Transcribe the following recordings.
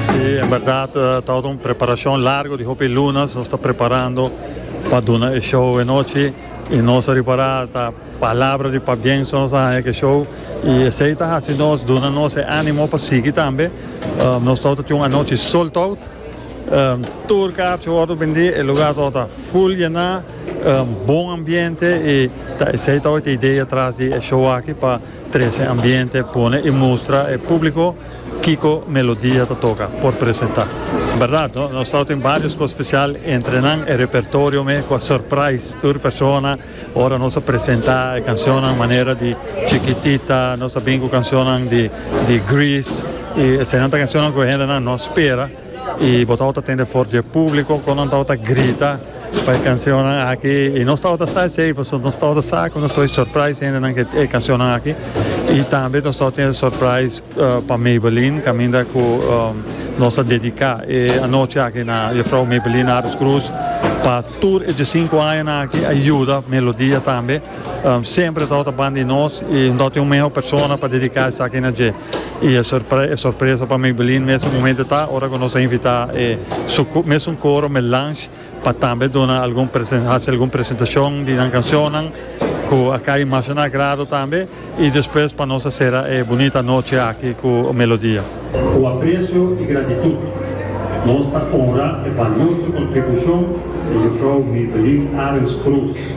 Si, en berdad ta un preparacion largo di hopi lunas nos ta preparando pa duna e show e nochi y nos a ripara ta palabra di pabienso nos a haña ke show y esey ta haci nos duna nos e animo pa sigui tambe. Nos tou ta tin un anochi sold out, tur kaartje wordo bendi, e lugar tou ta full yena, bon ambiente y ta esey tou ta idea tras di e show aki pa trece ambiente, pone y mustra e publico. Kiko melodia ta toka por presenta. Berdad no? Nos tawata tin varios cos special entre nan e repertorio me cu a surprise tur persona ora nos a presenta e cancionnan manera di Chiquitita, nos a bin cu cancionnan di Grease y eseinan ta cancionnan cu e hendenan no a spera. Y bo tabata tende for di e publico con nan tabata grita pa e cancionnan aki. Y nos tabata sa hacey, pasobra nos tabata sa cu nos ta bay surprise hendenan cu e cancionnan aki. Y tambe nos tabata tene surprise pa Maybelline, caminda cu nos ta dedica e anochi aki na Juffrouw Maybelline Aris Croes, pa tur e diecinco añanan aki a yuda Melodia tambe. Semper e tabata ban di nos y no tabata tin un meho persona pa dedica esaki na dje. Y e sorpresa pa Maybelline mester momento ta ora cu nos a invita e su mesun coro Melange pa tambe duna algun haci algun presentacion di nan cancionnan cu a cay mas na agrado tambe y despues pa nos a cera e bunita noche aki cu Melodia. Cu aprecio y gratitud nos ta honra e balioso contribucion di Mevrouw Maybelline Arends Kroes.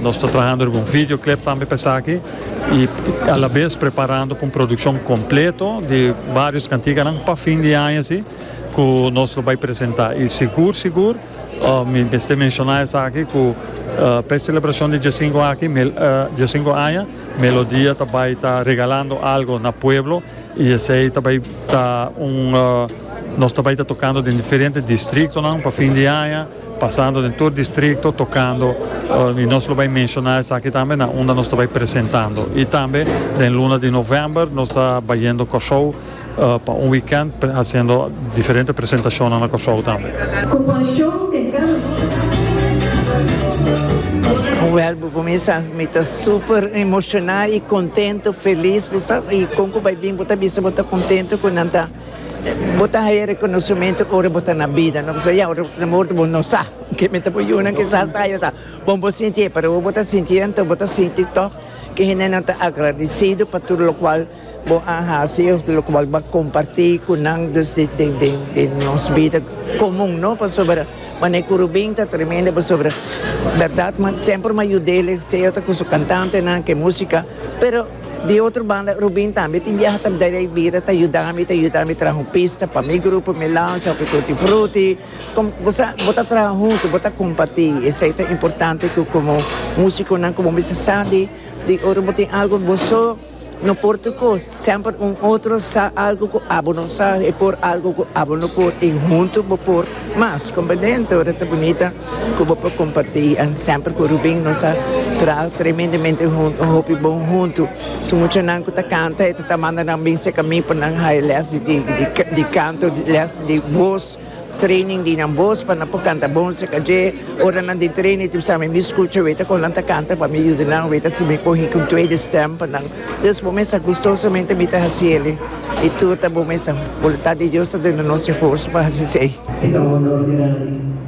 Nos ta trahando riba un videoclip tambe pa esaki y a la vez preparando pa un produccion completo di varios cantiganan pa fin di aña si cu nos lo bay presenta y sigur sigur mi mester menciona esaki cu pa e celebracion di diasinco aki diasinco aña Melodia ta bay ta regalando algo na pueblo y esey ta bay ta un nos ta bay ta tocando den diferente distritonan pa fin di aña. Pasando den tur distrikto tokando i nos lo bai menshoná esaki tambe na unda nos ta bai presentando. I tambe den luna di novèmber nos ta bayendo Kòrsou pa un wikènt hasiendo diferente presentashonnan na Kòrsou tambe. Ku pashon den kada uno. Wèl bo kuminsá, mi ta super emoshoná i kontentu, felis, bo sa kon ku bai bin bo ta bisa bo ta kontentu ku nan ta. Bo ta haya reconocimento ora bo ta na bida, no pasobra ya ora bo ta na morto bo no sa ke mester bo yunan kisas ta haya sa, bon bo sinti e pero ora bo ta sinti anto bo ta sinti tog ke hendenan ta agradecido pa tur locual bo a haci of locual bo a comparti cu nan dus di di nos bida comun no pasobra mane cu Rubin ta tremendo pasobra berdad semper m'a yud'e sea ta cu su cantantenan cu e musica pero. Di otro banda, Rubin tambe tin biaha ta bdai ei bira ta yudami, ta yudami traha un pista pa mi grupo, mi lounge, hopi tutti frutti. Con bo sa, bo ta traha huntu, bo ta compati. Esei ta importante cu como musiconan cu bo mester sa di, di ora bo tin algo bo so, no por tur cos. Semper un otro sa algo cu abo no sa, e por algo cu abo no por y huntu bo por mas. Comprende? Enton ora ta bunita. Cu bo por comparti y an semper cu Rubin nos a traha tremendemente hunto, un hopi bon hunto. Su muchanan cu ta canta e ta ta manda nan bin cerca mi pa nan haya les di di canto, les di voz, training di nan voz pa nan por canta bon cerca dje. Ora nan den training tin sabi mi scucha weta con nan ta canta pa mi yuda nan weta si mi por hiki un tweede stem pa nan. Dus bo mester gustosamente mi ta haci eli y tur ta bo mester. Voluntad di Dios ta duna nos e forza pa haci esey. E ta un honor grandi.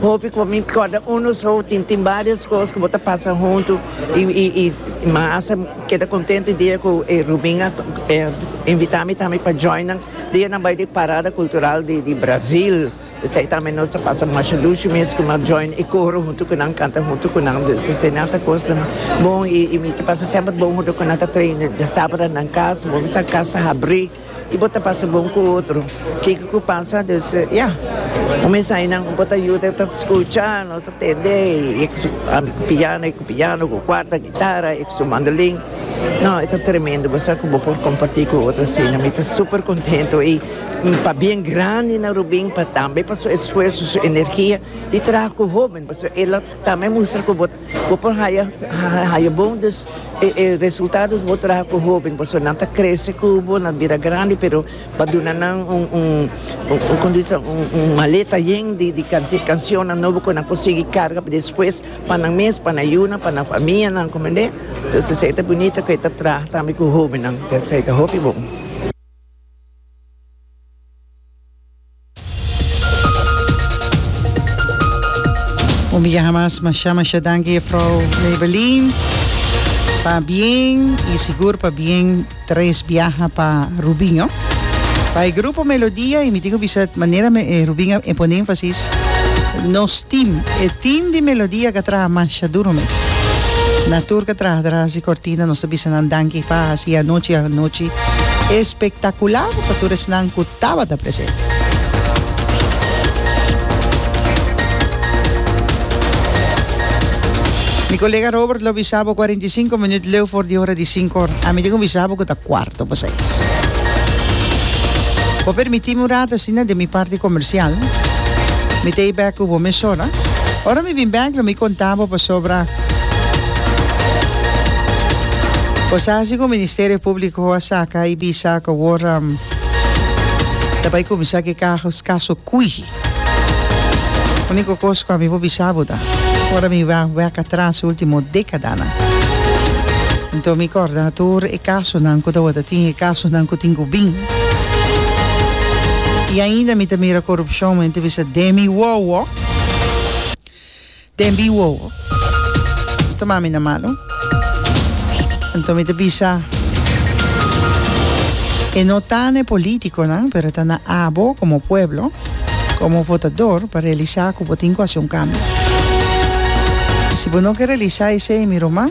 Hopi cu mi corda uno so tin tin varios cos cu bo ta pasa hunto y y y mi hasta keda contento e dia cu e Rubin a invita mi tambe pa joina dia nan bay di parada cultural di di Brazil esey tambe nos ta pasa masha dushi mes cu mi join e coro hunto cu nan canta hunto cu nan dus esey nan ta cosnan bon y y mi ta pasa semper bon hunto cu nan ta traina djasabra nan cas bo bisa cas ta habri. Y bo ta pasa bon cu otro. Kiko cu pasa dus ya. Un mensahe nan bo ta yuda ta scucha, nos ta tende y cu su piano y cu piano, cu cuarta guitarra y cu su mandolin. No, e ta tremendo. Bo sa cu bo por comparti cu otro asina. Mi ta super contento y pa bien grandi na Rubin pa tambe pa su esfuerzo, su energia di traha cu hoben. Pasobra el a tambe mustra cu bo Bo por haya bon, dus e resultados bo traha cu hoben pasobra nan ta crece cu bo, nan bira grandi, pero pa duna nan un maleta yen di cancionnan nobo cu nan por sigui carga pa despues pa nan mes, pa nan yunan, pa nan famianan, comprende? Entonces esey ta bunita cu e ta traha tambe cu hobennan, esey ta hopi bon. Un bia hamas masha masha danki jefrouw Maybelline pa bien y sigur pa bien tres biaha pa Rubin oh. Pa e grupo Melodia y mi tin cu bisa manera Rubin a pone enfasis nos team e team di Melodia ca traha masha duro mes na tur ca traha tras di cortina nos ta bisa nan danki pa hasi anochi anochi espectacular pa tur esnan cu Tabata presente. Mi colega Robert lo bisa bo cuarenta y cinco minuut leu for di hora di cinco. Ami tin cu bisa bo cu ta cuarto pa seis. Bo permiti mi un rato asina den mi parti comercial. Mi ta e bek cu bo mesora. Ora mi bin bek lo mi conta bo pasobra cosa hasi cu Ministerio Publico a saca y bisa cu awor Ta bai cuminsa cu e cajos caso cuiji. Unico cos cu ami por bisa bo ta, ora mi a wak atras e ultimo decadanan, enton mi corda tur e casonan cu tawata tin, e casonan cu tin cu bin. Y ainda mi ta mira corupcion, mi ta bisa demi wowo. Den bi wowo. Toma mi na mano. Anto mi ta bisa e no ta na e politiconan pero ta na abo como pueblo, como votador pa realisa cu bo tin cu hasi un cambio. Si bo no ke realisa esei mi ruma.